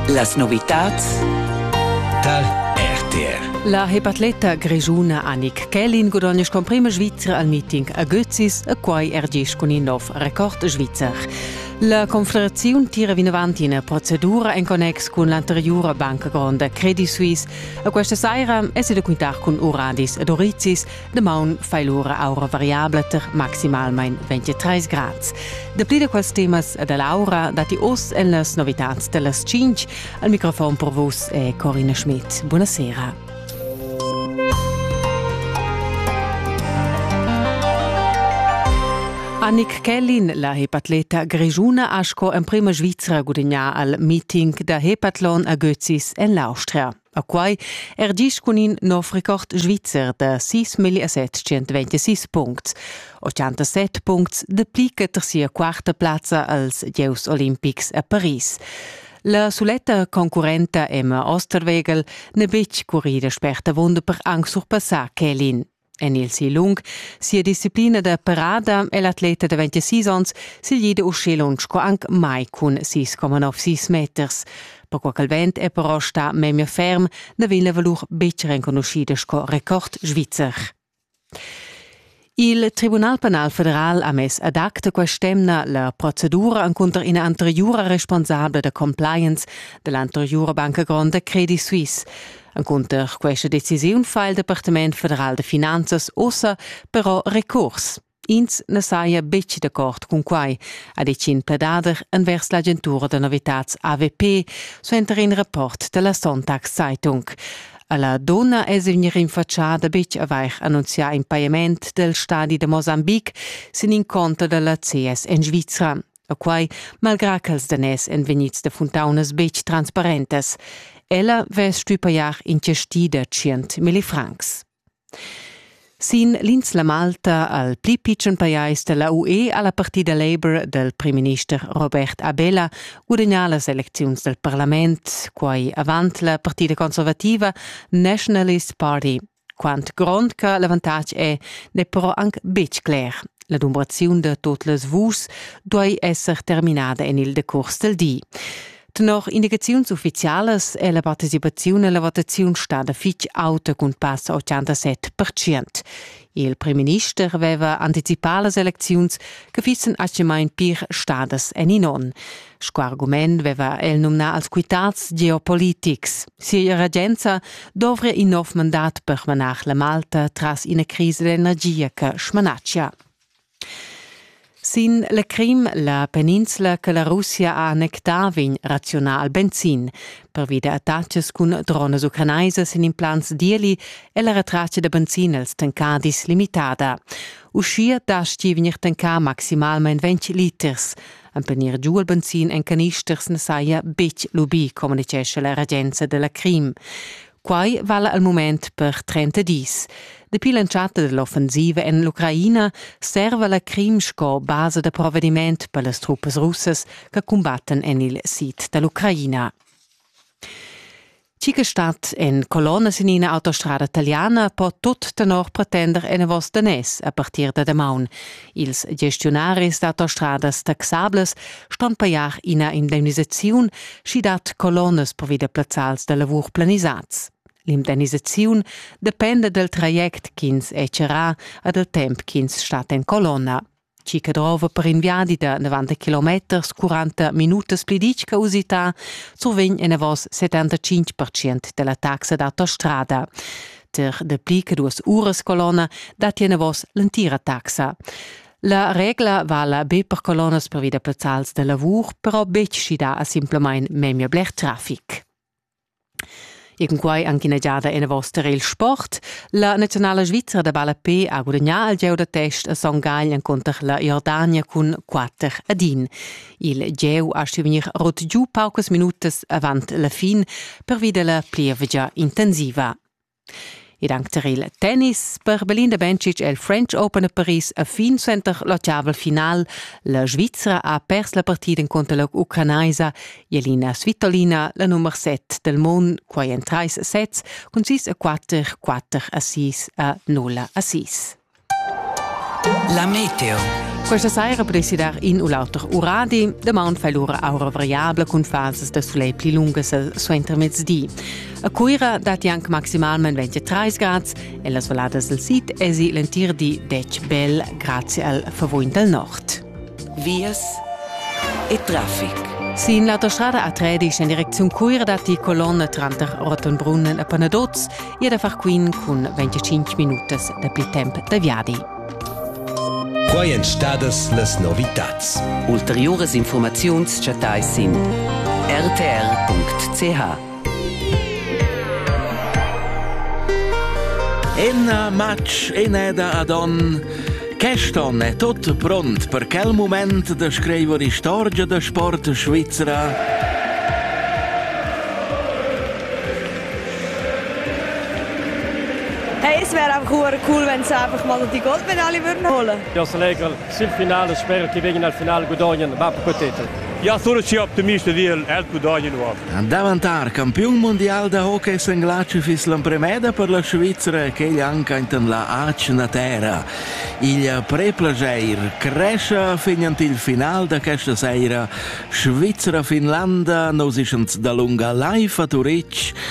Las novitads tar RTR. La hepatleta grischuna Annick Kellin gudognesch con prima Svizra al meeting a Götzis e quai er gis cun in nov record svizzer. La Confederaziun tira vinavant ina procedura en connex cun l'anteriura banca gronda Credit Suisse. A questa saira è se da quintar cun Uradis ed Orizzis Damaun fai l'ura aura variabla tar maximalmain 23 grads. Dapli da quels temas da l'aura datti oz en las novitads da las 5. Al microfon per vus è Corina Schmidt. Buonasera. Annick Kellin, la hepatleta grigiuna, ha sco emprima Svizra gudagnà al meeting da hepatlon a Götzis en l'Austria. A quai er gist cun in nov record svizzer da 6.726 puncts, 87 puncts de pli che ter sia quarta plazza als Gieus olimpics a Paris. La suletta concurrenta Emma Osterwegel n'è betg currida sperta vunda per anc surpassar Kelin. En il si lung sia disciplina da parada è l'atleta da 26 onns siglida uschè lunsch sco anc mai cun 6,96 meters. Perquai ch'el vent è però stà memia ferm, na vegn la valur betg renconuschida sco record svizzer. Il Tribunal penal federal ha mess ad acta quest'emna la procedura encunter ina anteriura responsabla da compliance dell'anteriura banca gronda Credit Suisse. Encunter questa decisiun fa il Departament federal de finanzas ussa però recurs. Ins ne saja betg d'accord cun quai, ha ditg in pledader envers l'agentura da novitats AVP, suenter in rapport della Sonntag Zeitung. La donna è vegnir rinfatschada betg avair annunzià in pajament del stadi de Mosambique sin in conto della CS en Svizra. da quai, malgrà ch'els daners èn vegnids da funtaunas betg transparentas. Ella vess stuì pajar in chasti da tschient milli francs. Sin l'ins la Malta al pli pitschen pajais da la UE ha la partida Labour dal primminister Robert Abela gudagnà las elecziuns dal parlament. Quai avant la partida conservativa Nationalist Party Quant grond che l'avantatg è, n'è però anc betg cler. La dumbraziun da tot las vus duai esser terminada en il decurs del di. Tenor indicaziuns uffizialas è la participaziun alla votaziun stada fitg auta cun passa 87%. Il primminister aveva anticipà las elecziuns che fissen atgemain pir stadas en in onn. Sco argument veva el numnà als quitads geopolitics. Sia regenza dovria in nov mandat per manar la Malta tras ina crisa d'energia che smanatschia. Sin la Crim, la peninsula che la Russia ha annectà, vegn raziunà al benzin. Pervi da attacks cun dronas ucrainaisas en implants d'ieli è la retratta da benzin als tancadis limitada. Uschia dastgi vegnir tancà maximalmain 20 liters. Empenir giu il benzin en canisters ne saja betg lubì, communitgescha la regenza della Crim. Quai vala al moment per 30 dis. Dapi l'entschatta dell'offensiva en l'Ucraina serva la Crim sco basa da provvediment per las truppes russas che combattan en il sid dall'Ucraina. Chi che stat en colonna sin ina autostrada italiana po tut tenor pretender enavos daners a partir da damaun. Ils gestiunaris d'autostradas taxables ston pajar ina indemnisaziun, schi dat colonnas provida plazzals da lavur planisads. L'indemnisaziun dependa dal traject ch'ins è charrà e dal temp ch'ins stat en colonna. chi che drova per in viadi da 90 km 40 minutas pli ditg che usità, survegn enavos 75% della taxa d'autostrada. Ter de pli che duas uras colonna dat enavos l'entira taxa. La regla vala be per colonnas per via da plazzals da lavur, però betg schidà a simplamain memia bler traffic. In quai anche ina giada enavos tar il sport. La naziunala svizra da ballape ha gudagnà il gieu da test a Son Gagl encunter la Jordania cun 4 ad 1. Il gieu ha stuì vegnir rut giu paucas minutas avant la fin pervi da la plievgia intensiva. Ed anc tar il tennis per Belinda Bencic è il French Open a Paris a fin suenter l'otgavel final. La Svizra ha pers la partida encunter la ucranaisa Jelina Svitolina, la nummer 7 del mondo, quai en trais sets cun 6 a 4, 4 a 6 a 0 a 6. La meteo. Questa sera presidar in u l'auter uradi. Damaun fa l'ura aura variabla cun fasas da soleil pli lungas suenter mezdi. A Cuira datti anche maximalment 23 gradi e las valadas del sid esi l'entir di dec bel grazie al favuin del nord. Vias e traffic. Sin l'autostrada A13 en direcziun Cuira datti colonna tranter Rottenbrunnen e Panaduz e da far quin cun 25 minutas dapi temp da viadi. Quai èn stadas las novitads. Ulteriuras informaziuns chattais sin rtr.ch. Enna matg eneda ad on. Quest'on è tutto pront per quel moment da scrivere istorgia da sport svizzera. Hey, es wäre einfach cool, wenn sie einfach mal die Goldmedaille würden holen. Ja, sehr geil. Sil final sper che vegin al final gudognan bapu co tetel. Ja sono schi optimista dil els gudognan uof. Davantar campiun mundial da hockey senglatschu fiss l'empremeda per la Svizra ch'egl anca intan la ac na terra. Il preplageir crescia fin ant il final da questa seira Svizra-Finlanda, nosischans da lunga live a Turitg,